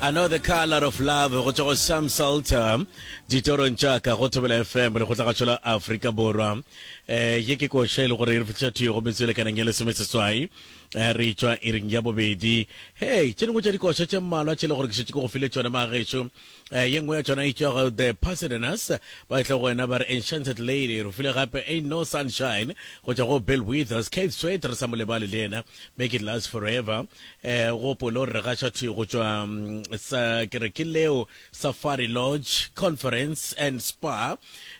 I know the color of love go tšwa go Sam Salter ditorong tša ka go Thobela FM le go tla gašola Afrika Borwa eh ye ke koša e le gore e re fihla thuyo go metswele kanang ya lesome seswai eh, re tšwa e reng ya bobedi hey tše dingwe tša dikoša tše mmalwa tše e le gore ke šetše ke go file tšone magešo eh, ye nngwe ya tšona e tšwa go the pasadenas ba tla go wena ba re enchanted lady re file gape ain't no sunshine go tšwa go bill withers kate sweat re sa mo lebale le yena make it last forever E gopolo re gaša thi go tšwa sa ke re ke leo Safari Lodge Conference and Spa.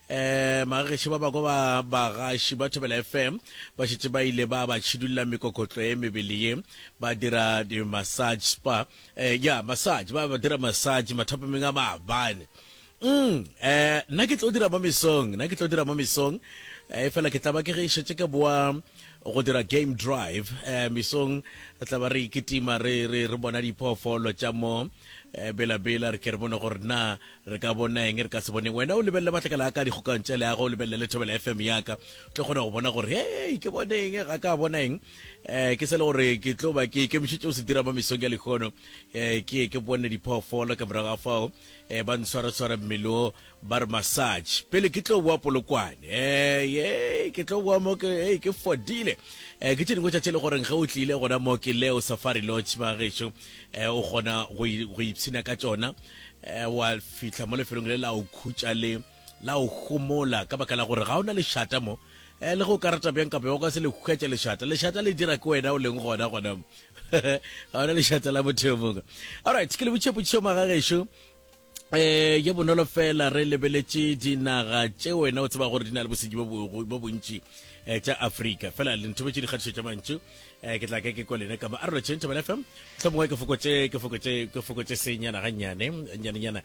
E magageši ba bako ba bagaši ba Thobela FM ba šetše ba ile ba ba tšhidulla mekokotlo e mebele ye ba dira di massage spa. E ya massage ba ba dira massage mathapameng a maabane. Umm, eh, nna ke tlo dira mo mesong, nna ke tlo dira mo mesong. Eh, fela ke tlaba ke ge e šetše ke boa go dira game drive. Eh, mesong re tlaba re ikitima re, re, re bona diphoofolo tša mo eh, bela-bela, re ke re bone gore na re ka bona eng, re ka se boneng. Wena o lebelele matlakala a ka dikgokang tša leago, o lebelele le Thobela FM ya ka, o tlo kgona go bona gore hei, ke bone eng, ga ka bona eng. Eh, ke sele gore ke tlo ba ke ikemišetše go se dira mo mesong ya lehono, eh, ke ye ke bone diphoofolo ka morago ga fao. Eh, ba ntshwaratshwara mmele o ba re massage pele ke tlo boa polokwane eh, eh, ke tlo boa mo ke eh, ke fodile eh, ke tše dingwe tšatši e le goreng ge o tlile gona mo ke leo safari lodge ba gešo eh, o kgona go i- go ipshina ka tšona eh, wa fihla mo lefelong le la o khutša le La o homola ka baka la gore ga o na lešata mo. Eh, le ge o ka rata bjang kapa o ka se le hwetša lešata. Lešata le dira ke wena o leng gona gona mo. ga o na lešata la motho yo mongwe. Alright, ke le botše potšišo magagešo. Eh, ye bonolo fela re lebeletše dinaga tše wena o tseba gore di na le bosenyi bo bontši eh, tša afrika fela le nthobetše dikgatišo tša mantšu eh, ke tla ka ke kwa lena ka mo arolo tšentšhabela fm tlhomongwe ke fokotše ke fokotše ke fokotše senyana gannyane nyanenyana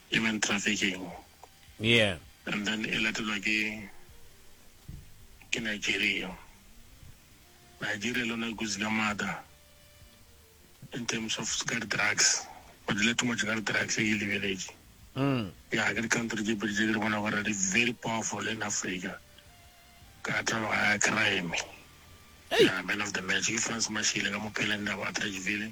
human trafficking yeah and then e latelwa ke ke Nigeria Nigeria le yona e kutsi ka maata in terms of ka di-drugs ba dile too much ka di-drugs e ke lebeletše mm. ya ke di-country tše pedi tše ke di bona gore di very powerful in africa ka tlalo ga crime ya man of the match ke france mashile ka mopheleng na ba trageville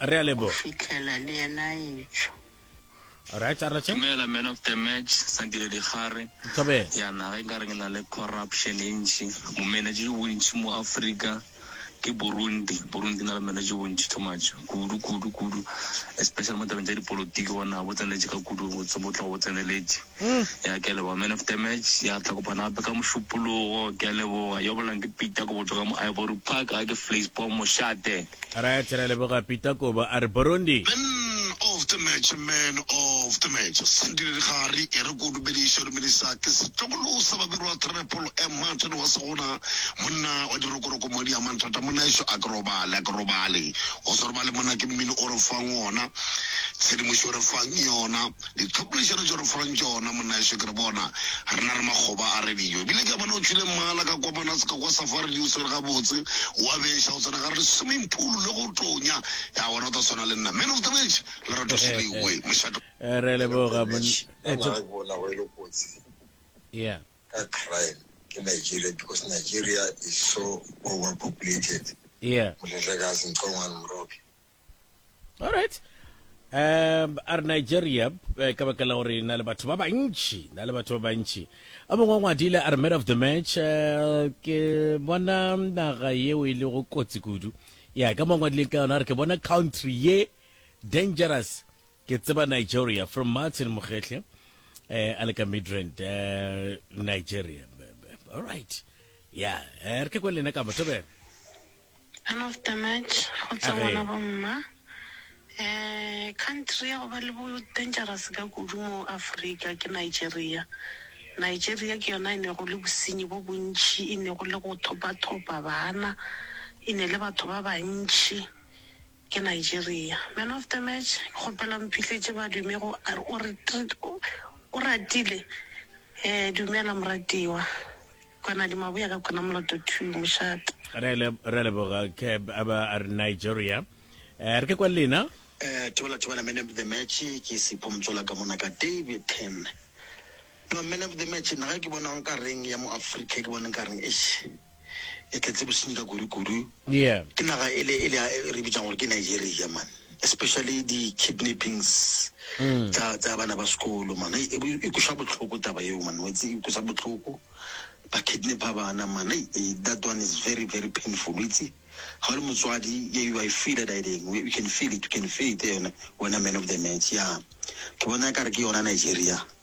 Re a leboga. Go fihlela le yena a etšwa. Alright a re tše. Dumela man of the match Sandile Digare. Thobela. Ya naga e kare e na le corruption e ntši, bo manager jo bontši mo Africa ke Burundi, Burundi e na le manager jo bontši too much kudu kudu kudu especially mo tabeng tša dipolotiki bona bo tseneletše ka kudu botse bo tloga bo tseneletše. Ya ke a leboga man of the match ya tla kopana gape ka mošupologo ke a leboga yo bolang ke Peter go botsoga mo Ivory Park ga ke Fleispo mošate. Right re a leboga Peter Kobo a re Burundi. Man of the match man of the match Sandile Digari e re keo dumediša dumediša ke setlogolo sa babirwa Treple M Martin wa Segona monna wa dirokoroko madi a manthata monna ešo a ke robale a ke robale o se robale monna ke mmino o re fang ona tshedimošo o re fang yona Dithopolešano tšeo re fang tšona monnaešo ke re bona, re na le makgoba a radio. Ebile ke a bona o tšhwile mmala ka kwamana sekokwa sa fa radio o swere gabotse, o a beša o tsena gare le swimming pool le go tonya. Ya wena o tla swana le nna. Man of the match, Lerato Seleoe, mošate. Re leboga mon. Ba ba re bona go e le kotsi Yeah. ka crime ke Nigeria because Nigeria is so overpopulated. Yeah. Moletlakazi Nxongwane Moroki. alright um a re nigeria eh, ka baka la gore na le batho ba bantši na le batho ba bantši a mongwe wa ngwadile a re man of the match eh, ke bona naga yeo e lego kotsi kudu ya ka mongwe ngwadile ka yona a re ke bona country ye dangerous ke tseba nigeria from martin mogetlhe eh, a le ka midrand eh, nigeria alright ya eh, re ke kwe lena ka motho bena Son of the match go tswa ngwana bo mma. Ehh country ya go ba le bo dangerous ka kudu mo Africa ke Nigeria. Nigeria ke yona e ne go le bosenyi bo bontši, e ne go le go thopa thopa bana, e ne le batho ba bantši ke Nigeria. Man of the match ke kgopela mphihletše badume go Oratile. Ehh dumela moratiwa. Kwana di mabuya ka kwana moloto two mošate. Re le re le boga ke aba are Nigeria. Eh, re ke kwa lena. Eh, tebela tebela man of the match ke sipho motsola ka mona ka David Ten. No man of the match nna ga ke bona nka reng ya mo Africa ke bona nka reng eish. E tletse bosenyi ka kudu kudu. Yeah. Ke naga ele ele re bitsang gore ke Nigeria man. especially di kidnappings tsa tsa bana ba sekolo man e e kusa botlhoko taba eo man wetse e kusa botlhoko ba kidnappa bana man e that one is very very painful wetse ga le motswadi ye you i feel it i ding you can feel it you can feel it yone wena man of the match ya ke bona ka re ke yona Nigeria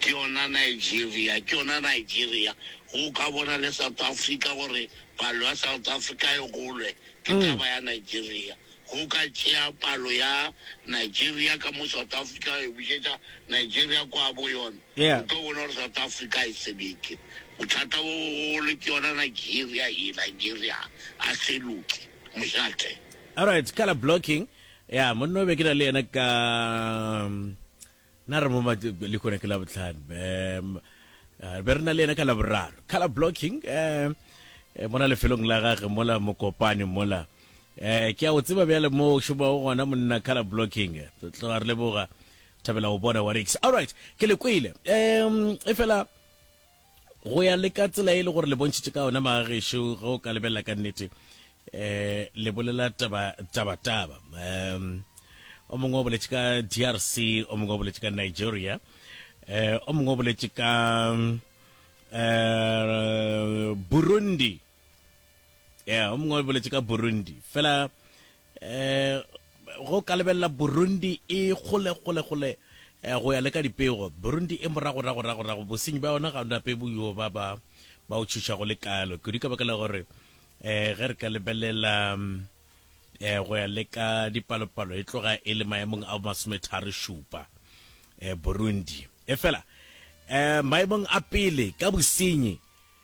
Ke yona Nigeria, ke yona Nigeria. Ge o ka bona le South Africa gore palo ya South Africa e golwe, ke taba ya Nigeria. Ge o ka tšea palo ya Nigeria ka mo South Africa wa e bušetša Nigeria kwa bo yona, o tlo bona gore South Africa ga e sebeke. Bothata bo bogolo ke yona Nigeria ye, Nigeria ga se loke, mošate. Alright, colour blocking. Yeah, monna o be ke na le yena ka. Na re mo lehono ke labohlano um be re na le yena ka laboraro color blocking um mona lefelong la gage mola mokopane mola um ke a o tseba bjale mo o šomago gona monna color blocking tloga re leboga thabela go bona wa rix allright ke le kwele um e fela go ya le ka tsela e le gore le bontšhitše ka yona magagešo ge o ka lebelela ka nnete um le bolela tabataba um o mongwe o boletše ka drc o mongwe o boletše ka nigeria um o mongwe o boletše ka um burundi ya o mongwe o boletse ka burundi fela um go ka lebelela burundi e gole gole gole um go ya le ka dipego burundi e moragoragoragorago bosenyi ba yona ga nape boyo ba ba ba o tšhoša go le kalo kudu ka baka la gore um ge re ka lebelela um go ya le ka dipalopalo e tloga e le maemong a masometharo šupa um burundi e fela um maemong a pele ka bosenyi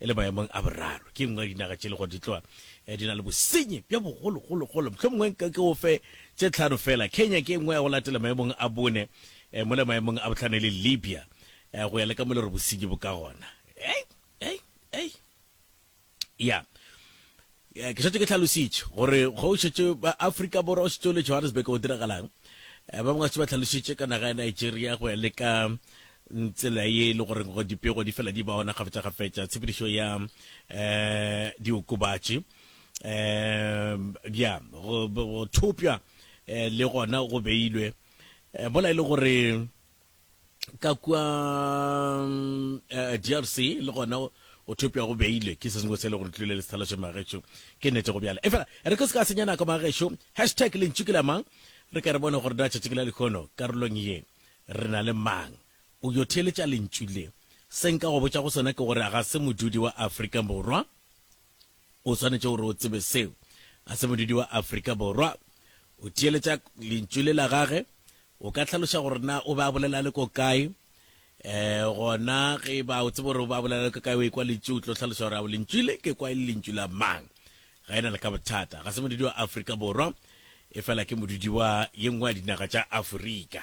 e le maemong a boraro. Ke e nngwe ya dinaga tše e le gore di tloa di na le bosenyi bja bogologologolo. Mohlomongwe nka ke o fe tše tlhano feela. Kenya ke e nngwe ya go latela maemong a bone, mola maemong a bohlano e le Libya, go ya le ka mo e le gore bosenyi bo ka gona. Ei! Ei! Ei! Ya. Ke šetše ke hlalošitše gore ge o šetše Afrika Borwa, o šetše o le Johannesburg, go diragalang. Ba bangwe ba šetše ba hlalošitše ka naga ya Nigeria go ya le ka tsela ye e le gore dipego di fela di ba ona kgafetšakgafetša, tshepedišo ya diokobatši, bja go thopša le gona go beilwe mola e le gore ka kua uh, eh, drc le gona o thopja go beile ke se sengwe se e le gore tlile le sethalase magetšo ke nete go bjala efela re ke se ka senya nako magetšo hashtag lentšu ke la mang re ka re bone gore datšatši ke la lekgono karolong ye re na le mang o yo theeletša lentšu le seng ka go botša go sona ke gore ga se modudi wa afrika borwa O swanetše gore o tsebe seo. Ga se modudi wa Afrika Borwa. O theeletša lentšu le la gage. O ka hlaloša gore na o be a bolela le ko kae? Um gona ge ba o tsebe gore o be a bolela le ko kae, o ekwa lentšu, o tlo hlaloša gore ao lentšu le ke kwa e le lentšu la mang. Ga e na le ka bothata. Ga se modudi wa Afrika Borwa, e fela ke modudi wa ye nngwe ya dinaga tša Afrika.